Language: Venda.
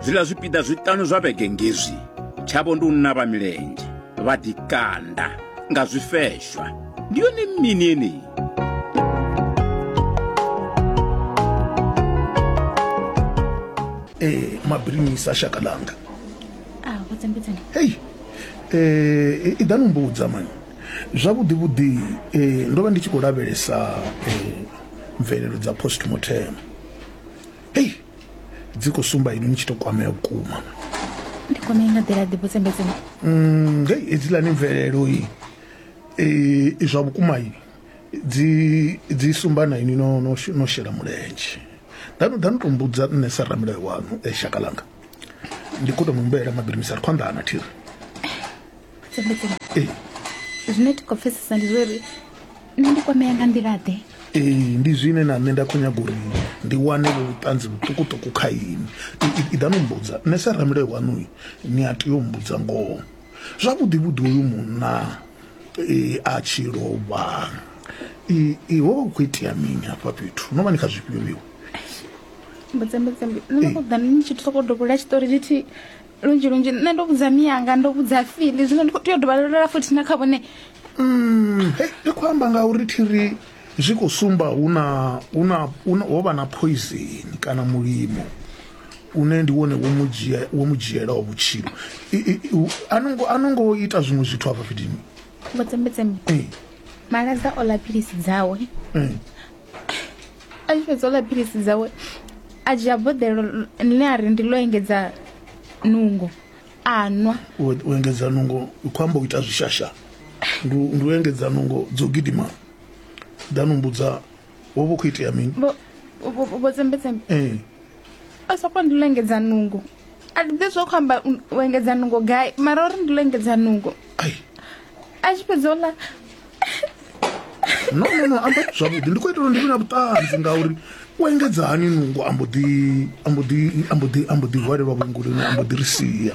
zwiḽa zwipiḓa zwiṱanu zwa vhege ngezwi tshavho ndi u navha milenzhe vha ḓikanda nga zwifeshwa ndi yone mini yeneyi eh mabrinisa shaka langa ah vhudzambedzani hey eh i danu mbudza man zwavhudi vhudi eh ndo vha ndi tshi khou lavhelesa eh mvelelo dza postmortem hei dzi khou sumba ini ni tshi to kwamea vhukuma ndi kwamea nga nḓila ḓi vhutsembedzeni mm, hei hedzilani mvelelo i e, zwa vhukuma i dzi dzi sumba na ini no, no, no shela mulenzhe danu danu to mbudza nṋe sa ramilayo wanu e shaka langa ndi khou to mu mbelela mabirimisa ri khou anḓana thiri tsembedzeni ee zwine ti khou pfesesa ndi zwo ri nṋe ndi kwamea nga nḓilaḓe ee ndi zwine na nṋe nda khou nyaga uri ndi wane vho vhuṱanzi vhuṱukuṱuku kha ini iḓa no mbudza nṋe sa ramulayo waṋu ni a tea u mbudza ngoho zwavhuḓi vhuḓi uyu munna e, a tshi lovha ho vha ku khou itea mini hafha fhethu no vha ni kha zwifhio vhiwo mbudzembedzembe ni khou ḓa ni tshi sokou dovhola tshiṱori lithihi lunzhi lunzhi nṋe ndo vhudza miyanga ndo vhudza fili zwino ndi khou tea u dovhalelela futhi na kha vhone mm, hey, ndi khou amba nga uri thiri zwi khou sumba huna huna ho vha na poison kana mulimo une ndi wone wo mu dzhiela o vhutshilo a no ngo ita zwiṅwe zwithu hafha fhidini vhotsembetseme malaza o lapilisi dzawe a tshi fhedza u ḽa philisi dzawe a dzhia boḓelo ḽine a ri ndi ḽo engedza nungo a nwa u engedza nungo u khou amba u ita zwishasha ndi u engedza nungo dzo gidima nda no mbudza wo vha u khou itea mini vho tsembetsembe ee a soko ndi ḽo engedza nungo a ndi ḓivhi zwa khou amba u- u engedza nungo gai mara uri ndi ḽo engedza nungo ai a tshi fhedza ola no no no amba zwavhuḓi ndi khou itela uri ndi vhe na vhuṱanzi ngauri u engedza hani nungo ambo ḓi ambo ḓi ambo ḓi ambo ḓi hwalelwa vhuengoloni ambo ḓi ri sia